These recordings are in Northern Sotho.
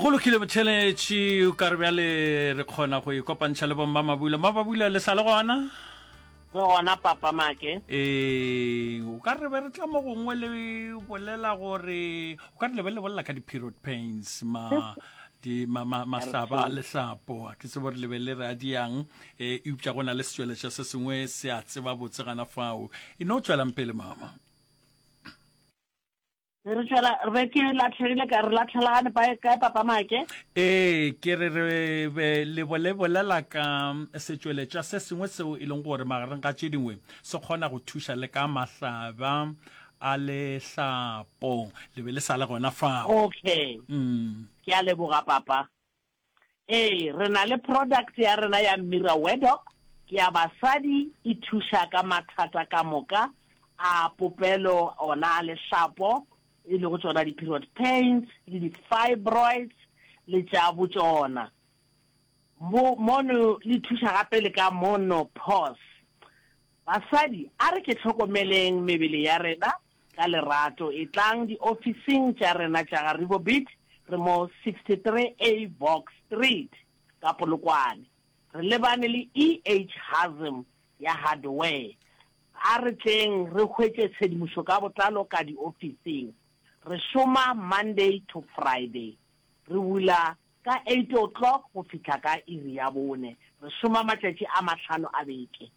go lokile botheletši o ka re bjale re kgona go ikopantšha le bomma mabula ma babula le sa le gona re gona papa make ee o ka re be re tla mo gongwe le bolela gore o ka re le be le bolela ka di-period pains ma mahlaba a lehlapo a ke tsebo re lebe le re a diang um e upša go na le setšweletša se sengwe se a tseba botse gana fao e no tswelang pele mama re tšwela re ke latlhegile ka re latlhelagane kae papa make ee ke re re be le bolebolela ka setšweletša se sengwe seo e leng gore magareng ga tše dingwe se kgona go thuša le ka mahlaba a lehlapo le be le sa le gona fao okay mm. ke a leboga papa Ee, re na le product ya rena ya Mira Wedok ya basadi, e thuša ka mathata ka moka a popelo ona a lehlapo, e lego tšona di-period pains le di-fibroids le tša botšona. Mo, mono le thuša gape le ka monopause. Basadi, a re ke hlokomeleng mebele ya rena ka lerato. Etlang diofising tša rena tša ga Rivobeat, re mo 63A Box Street ka Polokwane. Re lebane le EH Hazm ya Hardware. A re tleng re hwetše tshedimošo ka botlalo ka diofising. Re šoma Monday to Friday. Re bula ka eight o'clock go fihla ka iri ya bone. Re šoma matšatši a mahlano a beke.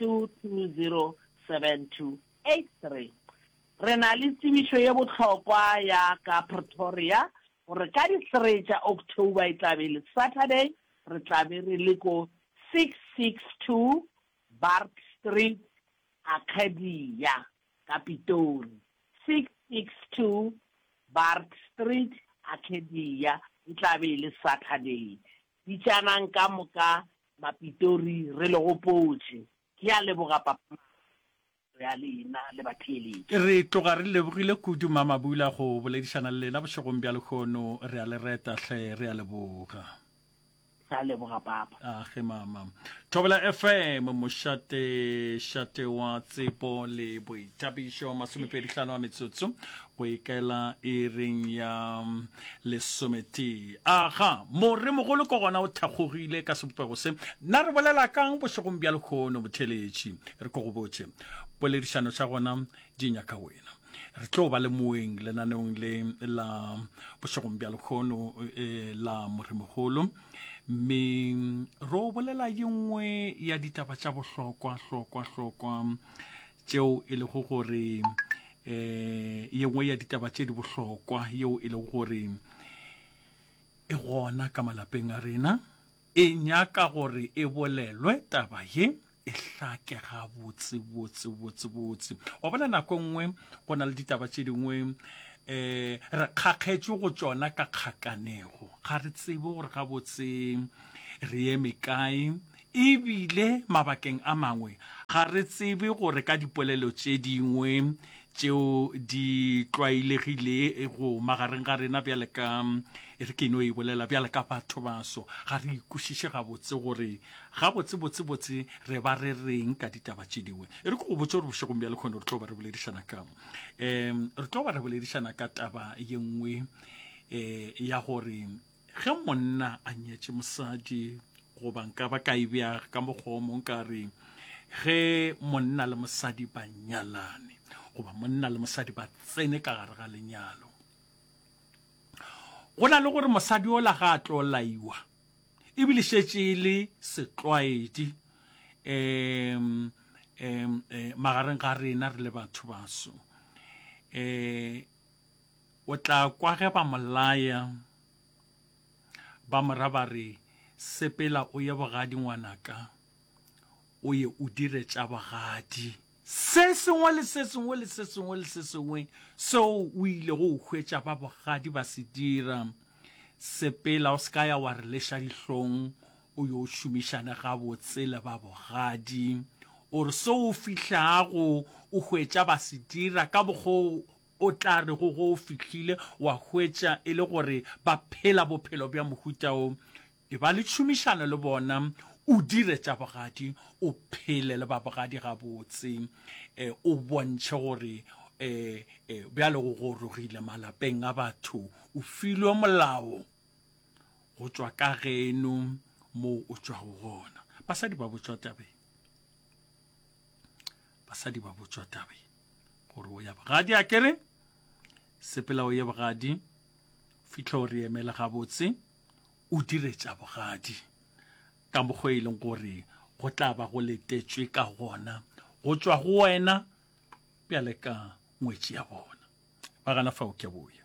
2207283. Re na le tsebišo ye bohlokwa ya ka Pretoria gore ka di 3 tša October e tla be e le Saturday, re tla be re le ko 662 Bart Street, Arcadia, ka Pitori. 662 Bart Street, Arcadia, e tla be e le Saturday. Bitšanang ka moka Mapitori re le gopotše. Ke a leboga Papa Mama tiro ya lena le batheeletši. Re tloga re lebogile kudu Mama Bula go boledišana le lena bošegong bja lehono. Re a le reta hle. Re a leboga. Re a leboga Papa. A ge Mama. Thobela FM, mošate šate wa tsepo le boithabišo, masomepedi hlano a metsotso Go ikaela iring ya lesometee. Aga, Moremogolo ke gona o thakgogile ka sebopego se. Na re bolela ka'ng bošegong bja lehono, Motheeletši? Re ko go botše. Poledišano tša gona di nyaka wena. Re tlo ba le moeng lenaneong le la bošegong bja lehono e, la Moremogolo, mme ro bolela ye nngwe ya ditaba tša bohlokwa-hlokwa-hlokwa tšeo e lego gore eh ye nngwe ya ditaba tše di bohlokwa yeo e lego gore e gona ka malapeng a rena e nyaka gore e bolelwe taba ye e hlake ga botse botse botse botse wa bona nako e nngwe go na le ditaba tše dingwe eh re kgakgetšwe go tšona ka kgakanego ga re tsebe gore ga botse re eme kae E bile mabakeng a mangwe ga re tsebe gore ka dipolelo tše dingwe tšeo di tlwaelegilego magareng ga rena bjale ka, e re ke no e bolela, bjale ka bathobaso, ga re e kwešiše gabotse gore gabotsebotsebotse re ba re reng ka ditaba tše dingwe. E re ke go botše gore bošegong bja lekgono re tlo ba re boledišana ka um re tlo ba re boledišana ka taba ye nngwe um ya gore Ge monna a nyetše mosadi, goba nka ba ka e bea ka mokgwa o mong ka re, ge monna le mosadi ba nyalane, goba monna le mosadi ba tsene ka gare ga lenyalo, go na le gore mosadi o la ga a tlo laiwa, ebile šetše e le setlwaedi um um magareng ga rena re le batho baso um O tla kwa ge ba mo laya, ba mo ra ba re, Sepela o ye bogadi, ngwanaka, o ye o dire tša bogadi. Se sengwe le se sengwe le se sengwe le se sengwe seo o ilego o hwetša ba bogadi ba se dira, sepela o se ka ya wa re leša dihlong o yo šomišane gabotse le ba bogadi. O re seo o fihlago o hwetša ba se dira ka mokgwa o O tla re go go o fihlile wa hwetša e le gore ba phela bophelo bja mohuta wo, eba le tšhomišano le bona, o dire tša bogadi, o phele le ba bogadi gabotse, e, o bontšhe gore e, e, bjale go gorogile malapeng a batho, o filwe molao go tšwa ka geno moo o tšwago gona. Basadi ba botšwa tabeng. Basadi ba botšwa tabeng. gore o ya bogadi a kere sepela o ye bogadi fitlha o re emele gabotse o dire tša bogadi ka mokgwa e leng gore go tla ba go letetswe ka gona go tšwa go wena bjale ka ngwetši ya bona ba gana fa o ke boya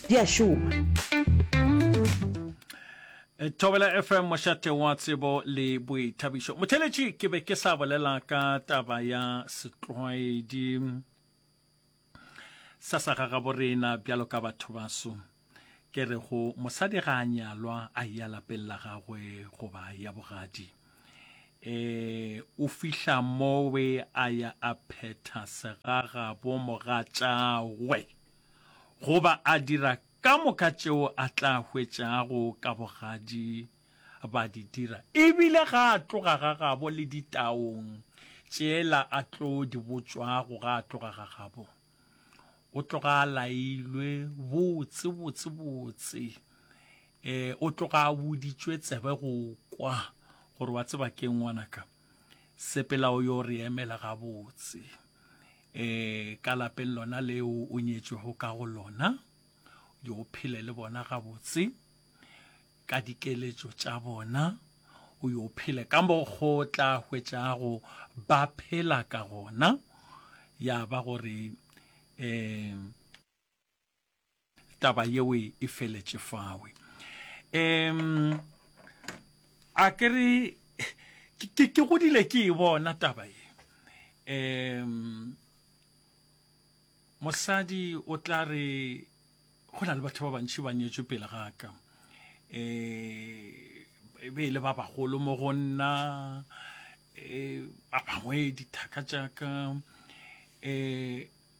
di a šoma. Thobela FM mošate wa tsebo le boithabišo. Motheletši ke be ke sa bolela ka taba ya setlwaedi sa sa ga gaborena bjalo ka batho baso ke re go mosadi ga a nyalwa a ya lapeng la gagwe goba ya bogadi eh o fihla mowe a ya a phetha segaga bo mogatšagwe goba a dira ka moka tšeo a tla hwetšago ka bogadi ba di dira, e bile ga a tloga ga gabo le ditaong tšela a tlo di botšwago ga a tloga ga gabo. O tloga a lailwe botse, botse, botse, e, o tloga a boditšwe tsebe go kwa gore wa tseba keng ngwanaka, sepela o yo re emela gabotse. e, ka lapeng lona leo o nyetšwego ka go lona, yo o phele le bona gabotse ka dikeletšo tša bona, o yo phele ka mokgo tla hwetšago ba phela ka gona, ya ba gore um taba yeo e feletše fawe um a ke re ke ke godile ke e bona taba ye um mosadi o tla re go na le batho ba bantši ba nyetswe pele ga ka um e be e le ba bagolo mo go nna um ba bangwe dithaka tša ka um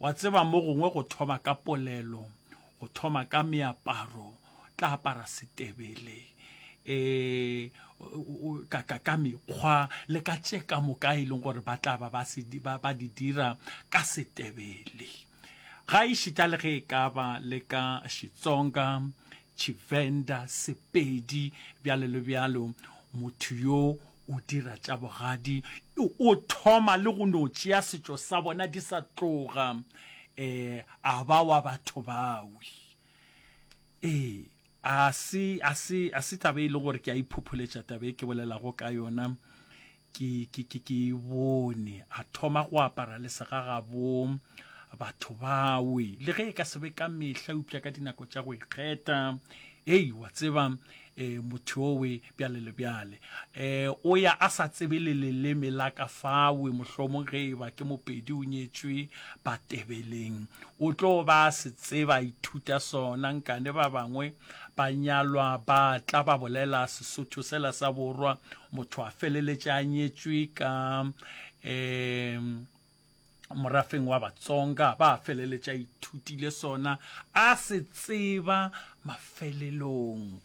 Wa tseba mo gongwe go thoma ka polelo, go thoma ka meaparo, tla apara setebele, e, ka, ka, ka mekgwa le ka tše ka moka e leng gore ba tla ba ba, se, ba, ba di dira ka setebele. Ga e šita le ge e ka ba le ka Xitsonga, Tshivenda, Sepedi, bjalo le bjalo, motho yo o dira tša bogadi, o thoma le go no tšea setšo sa bona di sa tloga um a ba wa batho bawi. Ee, a se, a se, a se taba e le gore ke a iphopholetša taba e ke bolelago ka yona, ke, ke, ke, ke e bone. A thoma go apara le segagabo batho bawi, le ge e ka se be ka mehla, eupša ka dinako tša go ikgetha. Hei, wa tseba, um e, mothowe bjale le bjale e, o ya a sa tsebe le leleme la ka fawe mohlomong ge e ba ke mopedi o nyetšwe batebeleng o tlo ba a se tseba a ithuta sona nkane ba bangwe ba nyalwa ba tla ba bolela sesotho sela sa borwa motho a feleletše a nyetšwe ka um morafeng wa batsonga ba feleletša ithutile sona a se tseba mafelelong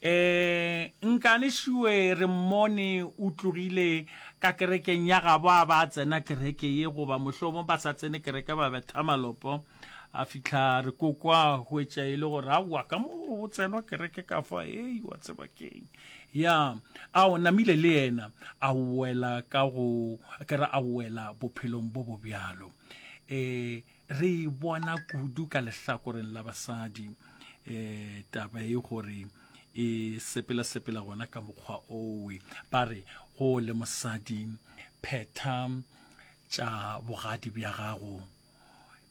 um nkane šiwe re mmone o tlogile ka kerekeng ya gabo a ba tsena kereke ye goba mohlomo ba sa tsene kereke ba betha malopo a fihla re ko kwa go etša e le gore a wa ka mo go tsenwa kereke ka fa ei wa tseba keng ya a o namile le yena a wela ka go ke re a wela bophelong bo bo bjalo um re e bona kudu ka lehlakoreng la basadi um taba e gore e sepela-sepela gona ka mokgwa owe ba re go le mosadi phetha tša bogadi bja gago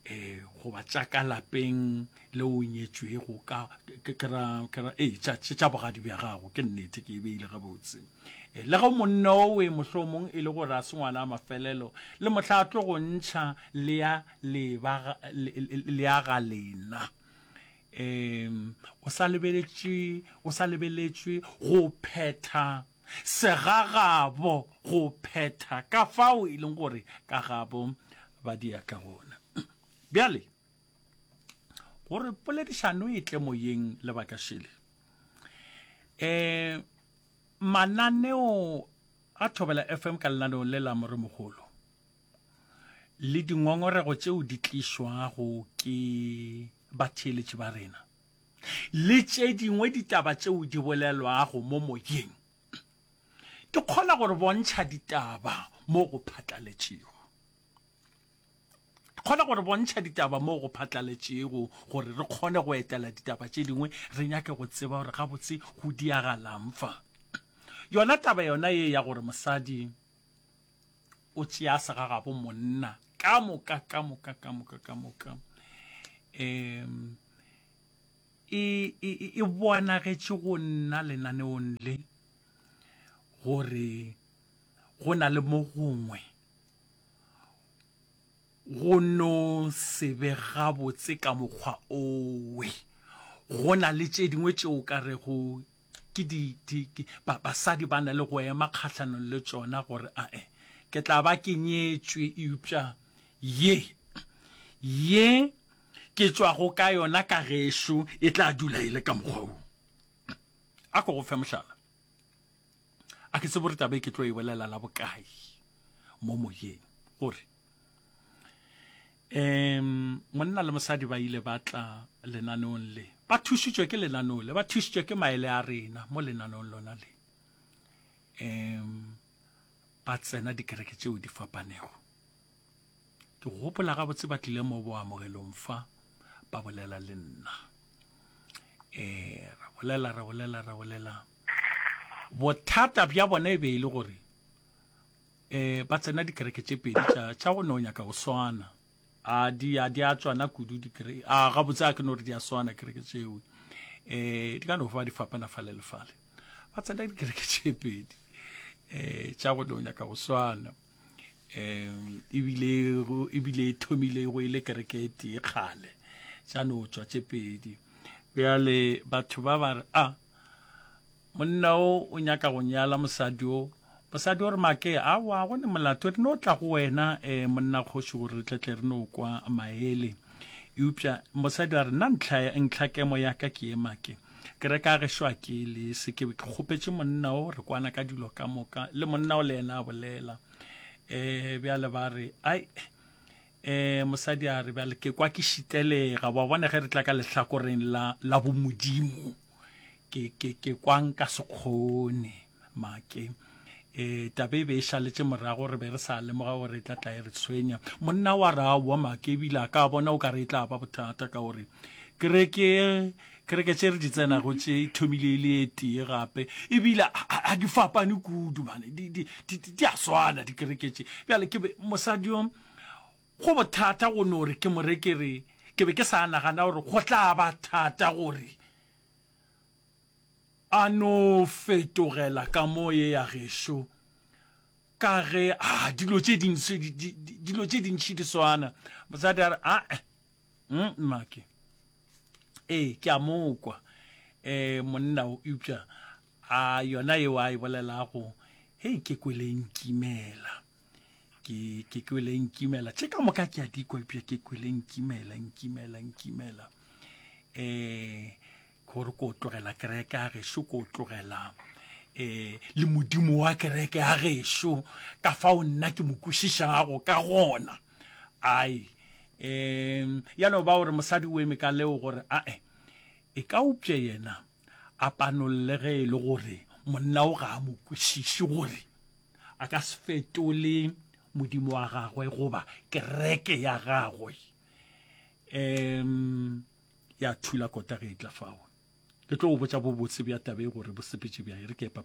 eh goba tša ka lapeng le o nyetšwego ka kera ee tša bogadi bja gago ke nnete ke e beile gabotse eh, le ge monna owe mohlomong e le gore a se ngwana a mafelelo le mohla a tlo go ntšha le ya ga lena um o sa lebeletšwe go phetha segagabo go phetha ka fao e leng gore ka gabo ba diatla gona. Bjale, gore poledišano e tle moyeng le bakašele, um mananeo a Thobela FM ka lenaneong le la Moremogolo le dingongorego tšeo di tlišwago ke batheeletši ba rena, le tše dingwe ditaba tšeo di bolelwago mo moyeng di kgona go re bontšha ditaba mo go phatlaletšego. Di kgona go re bontšha ditaba mo go phatlaletšego gore re kgone go etela ditaba tše dingwe re nyake go tseba gore gabotse go diagalang fa. Yona taba yona ye ya gore mosadi o tšea segagabo monna ka moka ka moka ka moka ka moka um e, e, e, e bonagetše go nna lenaneong le gore go na le mo gongwe go no se be gabotse ka mokgwa owe go na le tše dingwe tšeo ka rego Ke di, di, ke, ba, basadi ba na le go ema kgahlanong le tšona gore a e, ke tla ba ke nyetšwe, eupša ye, ye ke tšwago ka yona ka gešo e tla dula e le ka mokgwa wo. A ko go fe mohlala. A ke tsebe gore taba e ke tlo e bolela la bokae mo moyeng, gore um monna le mosadi ba ile ba tla lenaneong le ba thušitšwe ke lenaneo le ba thušitšwe ke maele a rena mo lenaneong lona le um ba tsena dikereke tšeo di fapanego ke gopola gabotse ba tlile mo boamogelong fa ba bolela le nna um ra bolela ra bolela ra bolela bothata bja bona e be e le gore eh ba tsena dikereke tše pedi tša tša go ne o nyaka go swana a di a di a tswana kudu dikereke a ga botse a ke no re di a swana kereke tšeo eh di ka no fa di fapana fa le lefale ba tsena dikereke tše pedi eh tša go ne o nyaka go swana um ebile ebile e thomile go ile e kereke e tee kgale tša no tswa tše pedi bjale batho ba ba re a ah, Monna o o nyaka go nyala mosadi o. Mosadi o re, Make, awa, go ne molato, re no tla go wena, eh, monna kgoši, gore re tle tle re no kwa maele. Eupša mosadi a re, Nna ntlha, ntlha kemo ya ka ke ye, Make. Ke re ka gešo a ke le se, ke be ke kgopetše monna o, re kwana ka dilo ka moka, le monna o le yena a bolela. Eh, bjale ba re, Ai, eh, mosadi a re, bjale ke kwa ke šitelega, wa bona ge re tla ka lehlakoreng la, la bomodimo. ke ke ke kwang ka sekgone make e tabe e be e šaletše morago re be re sa lemoga gore e tla tla e re tshwenya monna wa ra wa make ebile a ka bona o ka re e tla ba bothata ka gore kereke kereke tše re di tsenago tše e thomile e le e tee gape ebile a di fapane kudu mane di a swana dikereke tše bjale ke mosadi yo Go bothata go no re ke mo re ke re ke be ke sa nagana gore go tla ba thata gore a no fetogela ka mo ye ya gešo ka ge a dilo tše dintši dilo tše dintši di swana mosadi a re a e mmake ee ke a mokwa eh monna o upša a yona e wa e bolelago hei ke kwele nkimela ke ke kwele nkimela tše ka moka ke a di kwa epša ke kwele nkimela nkimela nkimela um gore ko tlogela kereke ya gešo ko tlogela um le modimo wa kereke ya gešo ka fao nna ke mo kwešišago ka gona ai um ya no ba gore mosadi o eme ka leo gore ae e ka upša yena A panolle ge e le gore monna o ga a mo kwešiše gore a ka se fetole modimo wa gagwe goba kereke ya gagwe um ya thula kota ge e tla fao ke tlo go botsa bobotse bja tabe gore bosepetše bja e re ke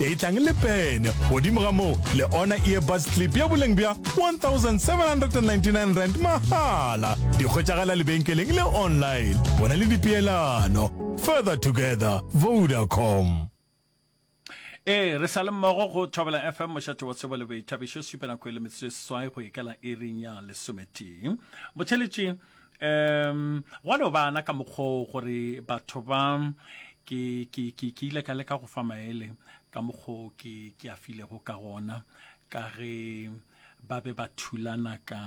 Etlang le pene. Godimo ga moo, le ona earbuds clip ya boleng bja 1799 rand mahala. Di hwetšagala lebenkeleng le online. Bona le dipeelano. Further together. Vodacom. Ee, re sa le mmogo go Thobela FM mošate wa tsebo le boithabišo supe nako e le metsotso e seswai go ikela iring ya lesometee botheletše Um, gwa no bana ka mokgwa o gore batho ba ke ke ke ke ile ka leka go fa maele ka mokgwa o ke ke a filego ka gona ka ge ba be ba thulana ka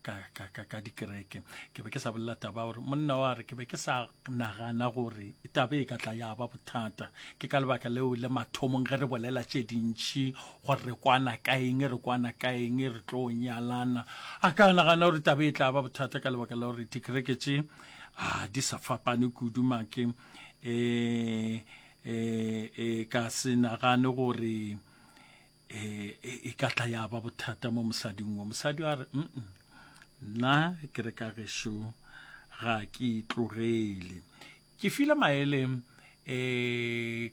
ka ka ka, ka dikereke ke be ke sa bolela taba gore monna wa re ke be ke sa Nagana gore taba e ka tla ya ba bothata. Ke ka lebaka leo le mathomong ge re bolela tše dintši gore re kwana ka eng, re kwana ka eng, re tlo nyalana. A ka nagana gore taba e tla ba bothata ka lebaka la gore dikereke tše a di sa fapane kudu make. E, e, e ka se nagane gore e, e, e ka tla ya ba bothata mo mosading wo mosadi a re nna ke re ka gešo ga ke itlogele ke file maele um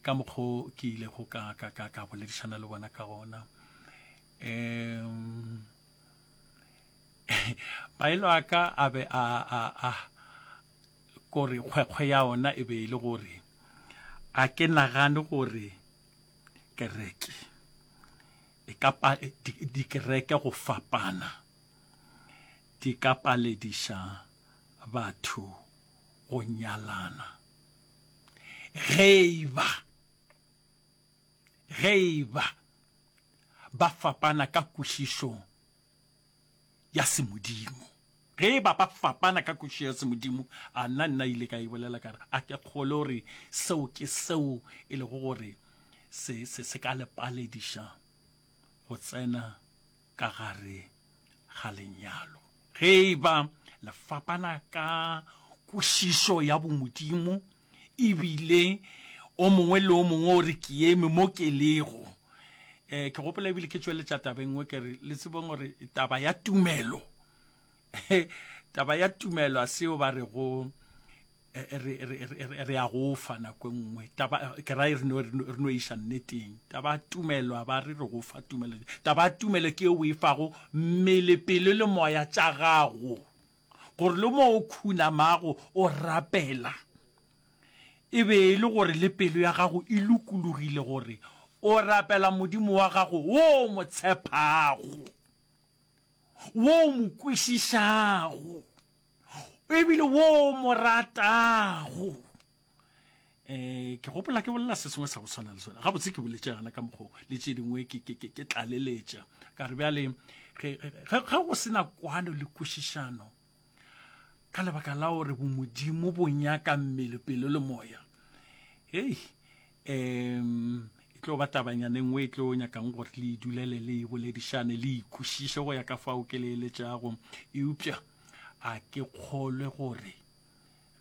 ka mokgwa ke ile go ka ka ka ka boledišana le bona ka gona um maelo a ka a be a a a kore kgwekgwe ya ona e be e le gore a ke nagane gore kereke e ka pa dikereke go fapana di ka palediša batho go nyalana ge e ba ge e ba ba fapana ka kwešišong ya semodimo. Ge e ba ba fapana ka kwešišo ya semodimo, a nna nna ile ka e bolela ka re a ke kgole gore seo ke seo e lego gore se, se, se ka le palediša go tsena ka gare ga lenyalo. Ge e ba le fapana ka kwešišo ya bomodimo, E bile o mongwe le o mongwe o re, Ke eme mo ke lego. Um ke gopola e bile ke tšweletša taba e nngwe ke re, le tsebeng gore taba ya tumelo, taba ya tumelo a seo ba re go re, re, re, re a go fa nako e nngwe. Taba, ke ra e re no, re no iša nneteng. Taba ya tumelo a ba re re go fa tumelo. Taba ya tumelo ke e o e fago mmele, pelo le moya tša gago. gore le mo o khunamago o rapela e be e le gore le pelo ya gago e lokologile gore o rapela Modimo wa gago wo o mo tshepago, wo o mo kwešišago ebile wo o mo ratago. eh ke gopola ke bolela se sengwe sa go tshwana le sone gabotse ke boletse gana ka mokgwa le tse dingwe ke tlaleletša ka re bjale ge go sena kwano le kwešišano ka lebaka la gore bomodimo bo nyaka mmele pelo le moya hei um e tlo ba tabanyana e nngwe e tlo nyakang gore le idulele le e boledišane le ikwešiše go ya ka fao ke leeletšago eupša a ke kgolwe gore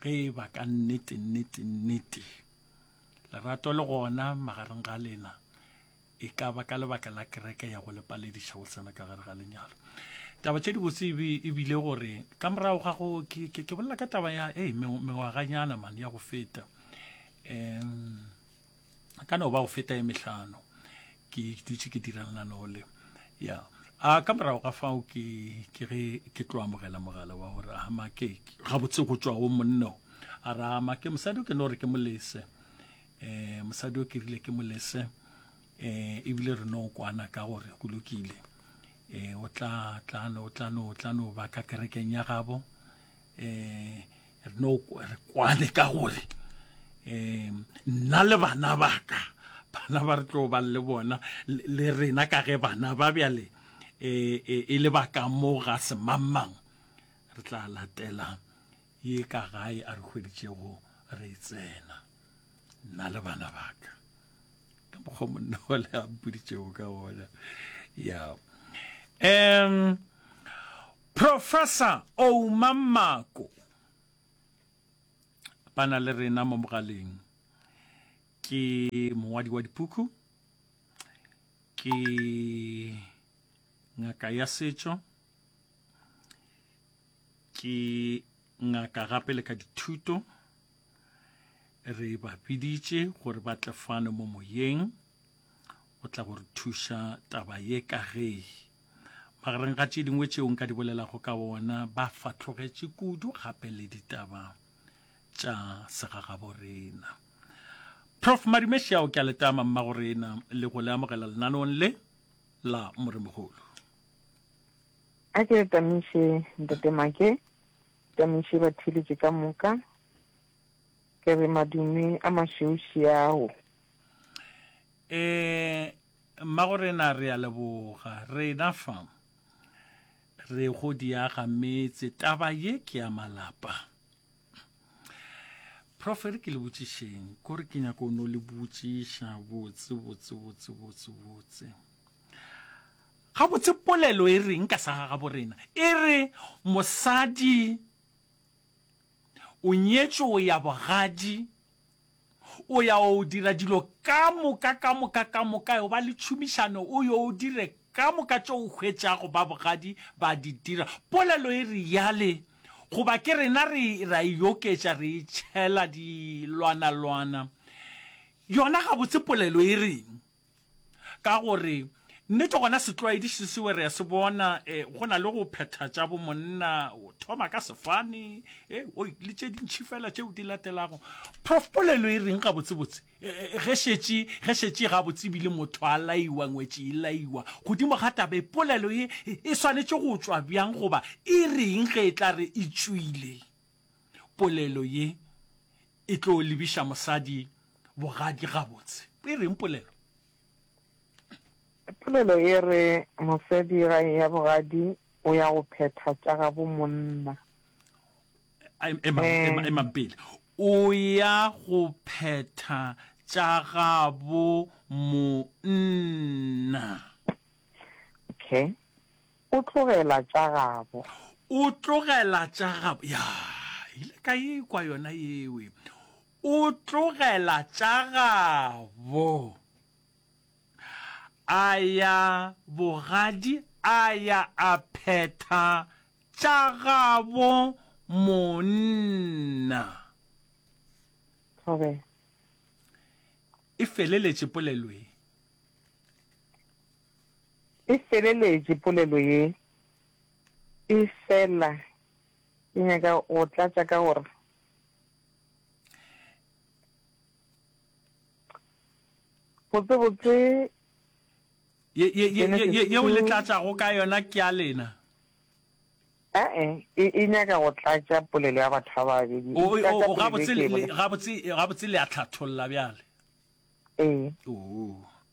ge e ba ka nnete nnete nnete lerato le gona magareng ga lena e ka ba ka lebaka la kereke ya go lepalediša go tsena ka gare ga lenyalo taba tše dibotse e bile gore ka morago ga go ke bolela ka taba ya e mengwaganyana mane ya go feta um a ka no ba go feta e mehlano ke dutše ke dira lenaneo le ya a ka morago ga fao ke ke ge ke tlo amogela mogala wa gore a make gabotse go tšwa go monno a ra make mosadi o ke no gore ke molese um mosadi o ke rile ke molese um ebile re no kwana ka gore go lokile um o tla tla no tla no tla no ba ka kerekeng ya gabo um re no re kwane ka gore um nna le bana baka bana ba re tlo ba le bona le rena ka ge bana ba bjale e, e, e le baka mo ga semangmang re tla latela ye ka gae a re hweditšego re e tsena nna le bana baka ka mokgwa monna wa le a mpoditšego ka gona ya um Professor Ouma Mako ba na le rena mo mogaleng. Ke mongwadi wa dipuku, ke ngaka ya setšo, ke ngaka gape le ka dithuto. Re ba biditše gore ba tle fano mo moyeng go tla go re thuša taba ye ka ge Magareng ga tše dingwe tšeo nka di bolelago ka ona, ba fatlogetše kudu gape le ditaba tša segagaborena. Prof Marimeshiao ke a letama mmagorena le go le amogela lenanong le la Moremogolo. A ke re tamiše ntate Make, tamiše batheeletše ka moka, ke re madume a mašeuši ao. Eh Mmagorena, re a leboga. Rena fa re go diaga metse, taba ye ke ya malapa. Prof, ere ke le botšišeng, kore ke nyaka o no le botšiša botse, botse, botse, botse, botse. Ga botse polelo e reng ka sa ga gabo rena? E re mosadi o nyetšwe o ya bogadi, O ya o yo dira dilo ka moka, ka moka, ka moka, yo ba le tšhomišano, o yo o dire ka moka tšeo o hwetšago ba bogadi ba di dira. Polelo e reale, goba ke rena re, ra e oketša, re e tšhela dilwanalwana. Yona gabotse polelo e reng? Ka gore, nnete gona setlwaedi se sewe re a se bona, e, go na le go phetha tša bomonna, o thoma ka sefane, e, oi, le tše dintši fela tšeo di latelago. Prof, polelo e reng gabotsebotse, e, e, ge šetše, ge šetše e gabotse ebile motho a laiwa, ngwetši e laiwa, godimo ga taba e, polelo ye e swanetše go tšwa bjang goba e reng ge e tla re e tšwile? Polelo ye e tlo lebiša mosadi bogadi gabotse. E reng polelo? Polelo e re mosadi ga eya bogadi o ya go phetha tša gabo monna. Emang pele. O ya go phetha tša gabo monna. Okay. O tlogela tša gabo. O tlogela tša gabo. Ya, ile ka e kwa yona yewe. O tlogela tša gabo. A ya bogadi a ya a phetha tša gabo monna. Thobela. E feleletše polelo ye. E feleletše polelo ye. E fela ke nyaka go tlatša ka gore botsebotse Ye, ye, ye, ye, ye, yeo le tlatšago ka yona ke ya lena. Ae, e, e nyaka go tlatša polelo ya batho ba babedi. O, E o, tlatša o, polelo e gabotse, ke e le, bolela. gabotse, gabotse le a hlatholla bjale. Ee. Oo.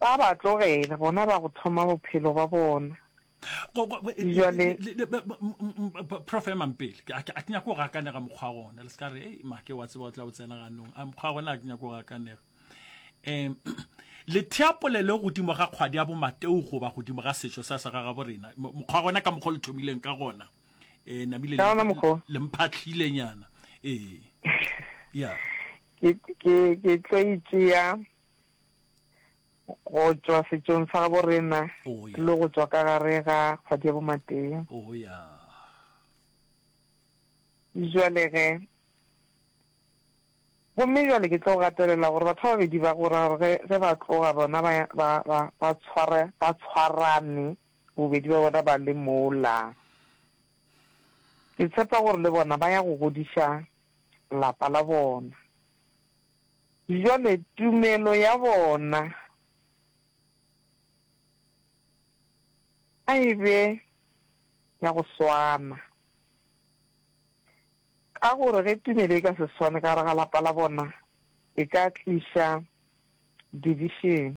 Ba ba tlogela, bona ba go thoma bophelo ba bona. Go, go, le, Bjale- le, le, ba- ba- m- m- m- ba- prof emang pele Ke- a ke a ke nyako go gakanega mokgwa wa gona le se ka re ei make wa tseba o tla o tsena ganong a mokgwa wa gona a ke nyako go gakanega um letheapole le godimo ga kgwadi ya bomateo goba godimo ga setšo sa sa gagabo rena Mo- mokgwa wa gona ka mokgwa o le thomileng ka gona um namile Ka wona mokgwa o. le mphatlhilenyana ee ya ke ke ke tlo e tšea go tšwa setšong sa gabo rena oh, yeah. le go tšwa ka gare ga kgwadi ya bomatee oh, yeah. jwale ge gomme jwale ke tlo gatelela gore batho ba babedi ba gora gore ge ba tloga bona ba tshwarane bobedi ba bona ba le mola ke tshepa gore le bona ba ya go godiša lapa la bona Bjale tumelo ya bona a e be ya go swana, ka gore ge tumelo e ka se swane ka gare ga lapa la bona, e ka tliša divišene.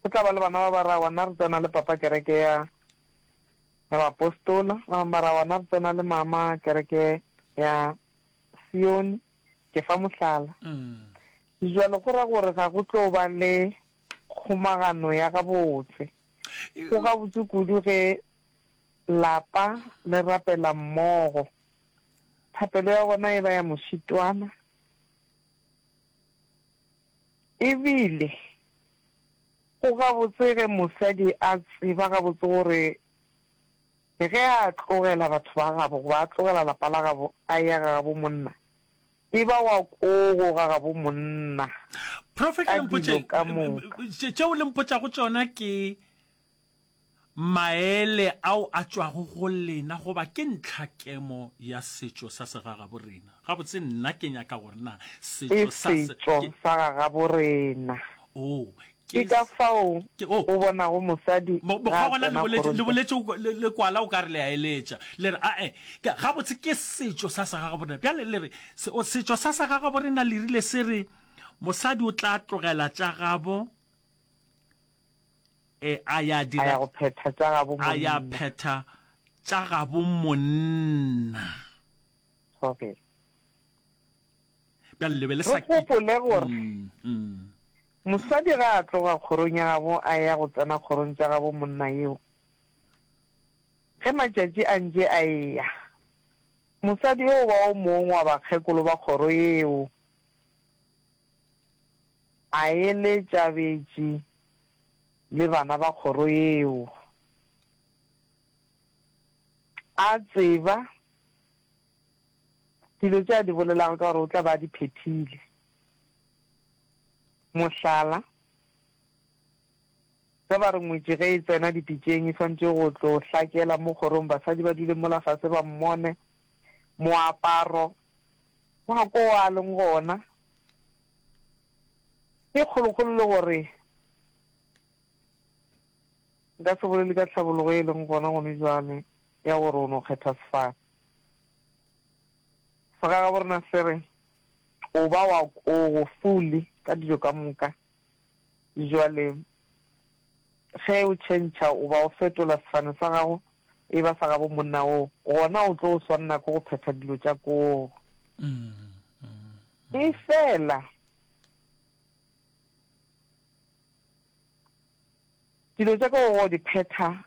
Go tla ba le bana ba ba ra, Ona re tsena le papa kereke ya ya baapostola, ba bangwe ba ra, Ona re tsena le mama kereke ya Sione, Ke fa mohlala. Sejwalo go ra gore ga go tlo ba le kgomagano ya gabotse. Go gabotse kudu ge lapa le rapela mmogo. Thapelo ya bona e ba ya mošitwana e bile go gabotse ge mosadi a tseba gabotse gore Le ge a tlogela batho ba gabo goba a tlogela lapa la gabo a eya ga gabo monna, e ba wa kogo ga gabo monna Profeta, ka dilo ka moka. Profeta, tšeo le mpotšago tšona ke maele ao a tšwago go lena goba ke ntlhakemo ya setšo sa segagabo rena? Gabotse nna ke nyaka gore na setšo sa se, ke, sa gagabo rena. Oo, Ke ka fao o bonago mosadi ga a tsena kgorong. Le boletše le kwala o ka re le a eletša. Le re, A-e, gabotse ke setšo sa segagaborena. Bjale le re, Setšo sa segagaborena le rile se re, Mosadi o tla tlogela tša gabo a ya dira, a ya go phetha tša gabo monna, a ya phetha tša gabo monna. Okay. Bjale le be le sa. Re gopole gore. Mm, mm. Mosadi ga a tloga kgorong ya gabo a eya go tsena kgorong tša gabo monna yeo. Ge matšatši a ntše a eya, mosadi yeo ba o mong wa bakgekolo ba kgoro yeo a eletša betši le bana ba kgoro yeo, a tseba dilo tše a di bolelago ka gore o tla be a di phethile. Mohlala, ge ba re ngwetši ge e tsena dipitšeng e swanetše go tlo hlakela mo kgorong basadi ba dule mola fase ba mmone, moaparo wa ko a leng gona ke kgolokgolo le gore nka se bolele ka tlhabologo e leng gona gone bjale ya gore o no kgetha sefane. Segagabo rena se re, O ba wa o go fuli ka dijo ka moka. Jwale, ge o tšhentšha o ba o fetola sefane sa gago e ba sa gabo monna wo, gona o tlo o swanna ke go phetha dilo tša koo. Efela, dilo tša koo go di phetha,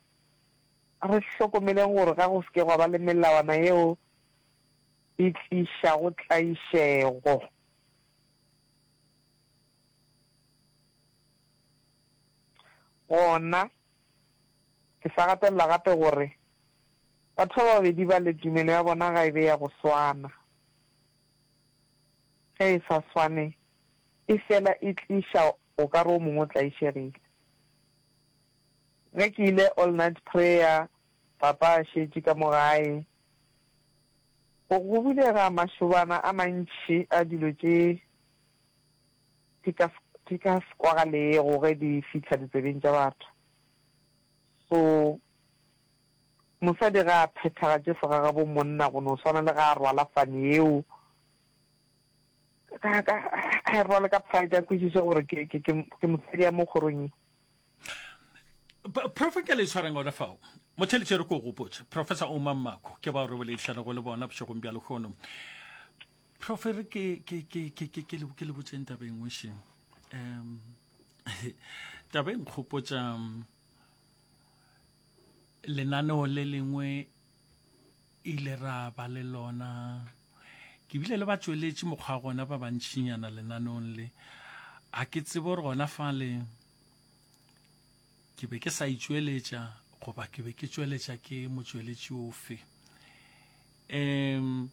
re hlokomeleng gore ga go se ke gwa ba le melawana yeo e tlišago tlaišego. Gona, ke sa gatelela gape gore batho ba babedi bale tumelo ya bona ga e be ya go swana. Ge e sa swane, e fela e tliša o ka re o mongwe o tlaišegile. Ge ke ile All-Night Prayer, Papa a šetše ka mo gae. Go bulega mašobana a mantši a dilo tše di ka se kwagalego ge di fihla ditsebeng tša batho. So mosadi ge a phethagatše segagabomonna go no swana le ge a rwala fane yeo, a e rwale ka pride, a kwešiše gore ke mosadi ya mo kgorong ye. profe ke le tshwarang ona fao motheletše re ko gopotse professor oma mmako ke bao re boledišana go le bona bošegong bja lekgono profe re ke le botseng taba e nngwe šeng um taba e nkgopotsa um, lenaneo le lengwe ile ra ba le lona ke bile le ba tsweletše mokgwa gona ba bantšinyana lenaneong le a ke tsebo gore gona fa le ke be ke sa itšweletša goba ke be ke tšweletša ke motšweletši ofe um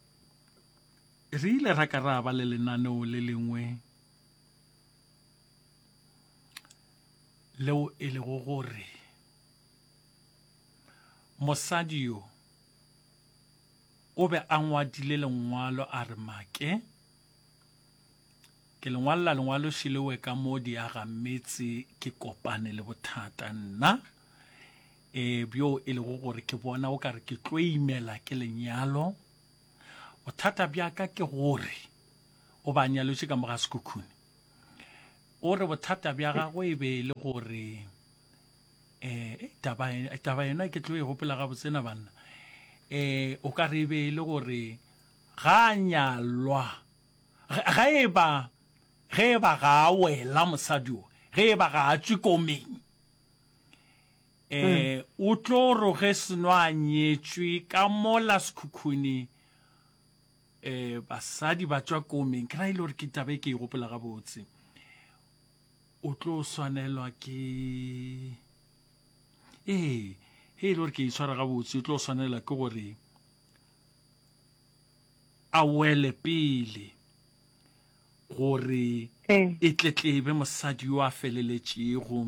re ile ra ka ra ba le lenaneo le lengwe leo e lego gore mosadi yo o be a ngwadile lengwalo a re make Ke le ngwalla lengwaloši lewe ka mo diaga metse ke kopane le bothata nna e bjo e lego gore ke bona o ka re ke tlo imela ke lenyalo bothata bja ka ke gore o ba nyalotše ka moga sekhukhune o re bothata bja gagwe e be e le gore um taba yena ke tlo e gopela gabotsena banna um o ka re e be e le gore ga nyalwa Ge e ba, ge e ba ga a wela mosadi o, ge e ba ga a tšwe komeng, e, hmm. o tlo ro ge seno a nyetšwe ka mola sekhukhuni, e, basadi ba tšwa komeng, ke ra e le gore ke tabe ke e gopola gabotse, o tlo swanelwa ke, ee, ge e le gore ke e tshwara gabotse, o tlo swanelwa ke gore, a wele pele gore e tletlebe mosadi yo a feleletšego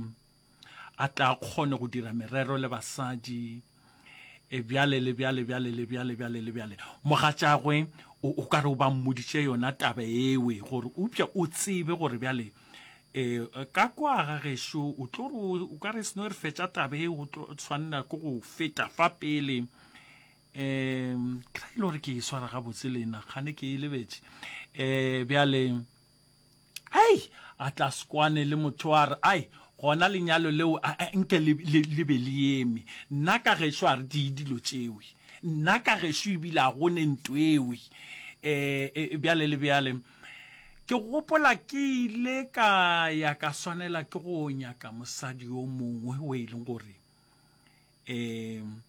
a tla kgone go dira merero le basadi e bjale le bjale bjale le bjale bjale le bjale mogatšagwe o ka re o ba mmoditše yona taba ewe gore upša o tsebe gore bjale um ka kwa ga gešo o tlo re o ka re seno re fetša taba e o tlo tshwanela ke go feta fa pele um ke ra ile gore ke e swara gabotse le ena gane ke e lebetše um bjale ai a tla sekwane le motho wa re ai gona lenyalo leo nke le be le eme nna ka gešo a re di dilo tšewe nna ka gešo ebile a gone nto ewe um bjale le bjale ke gopola ke ile ka ya ka swanela ke go nyaka mosadi yo mongwe o e leng gore um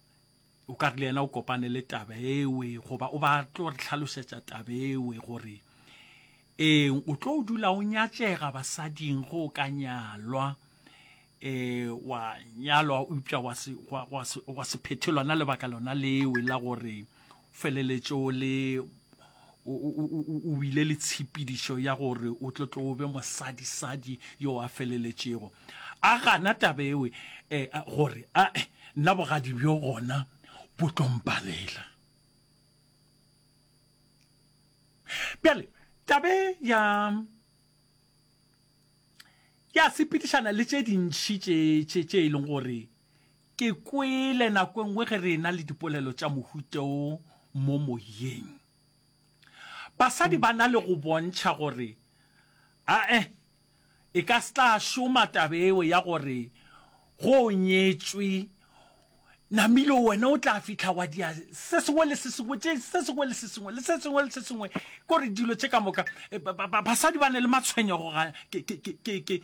o ka re le yena o kopane le taba ewe goba o ba tlo re tlhalosetša taba ewe gore ee o tlo o dula o nyatšega basading go o ka nyalwa eh wa nyalwa upša wa se wa se wa se phethelwa na lebaka lona lewe la gore feleletse o le o wile le tshepidišo ya gore o tlo tlo be mosadisadi yo a feleletšego a gana tabe ewe eh, gore a eh, nna bogadi bjo gona bo tlompalela bjale tabe ya ya sepedišana le tše dintšhi tše e leng gore Ke kwele nako e nngwe ge re ena le dipolelo tša mohuta wo mo moyeng, basadi ba na le go bontšha gore a-e e ka se tla šoma taba yeo ya gore ge o nyetšwe, namile wena o tla fihla wa dia se sengwe le se sengwe, tše se sengwe le se sengwe le se sengwe le se sengwe. Ke gore dilo tše ka moka, ba-ba-ba-basadi ba na le matshwenyego ga ke-ke-ke-ke-ke.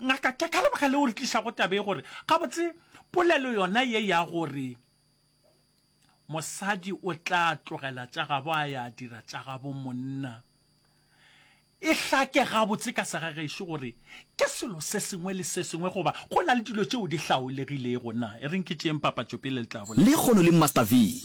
Ngaka, ke ka lebaka leo re tlišago taba e gore gabotse polelo yona ye ya gore mosadi o tla tlogela tša gabo a ya dira tša gabo monna e hlake gabotse ka segagešo gore ke selo se sengwe le se sengwe goba go na le dilo tšeo di hlaolegilego na e reng ke tšeeng papatšopele le tla bolela. Lehono le Master V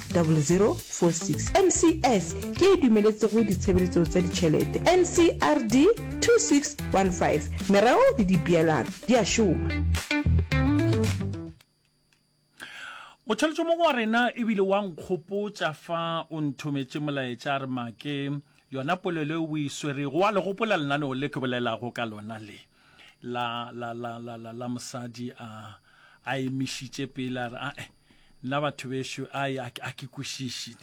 0046. NCS ke e dumeletšego ditshebeletso tša ditšhelete, NCRD 2615. Merero le dipeelano di a šoma. O tšholotše mo go wa rena e bile wa nkgopotša fa o nthometše molaetša a re make yona polelo e o e swerego wa le gopola lenaneo le ke bolelago ka lona le. la la la la la la mosadi a a emišitše pele a re a nna batho bešo a ke kwešiše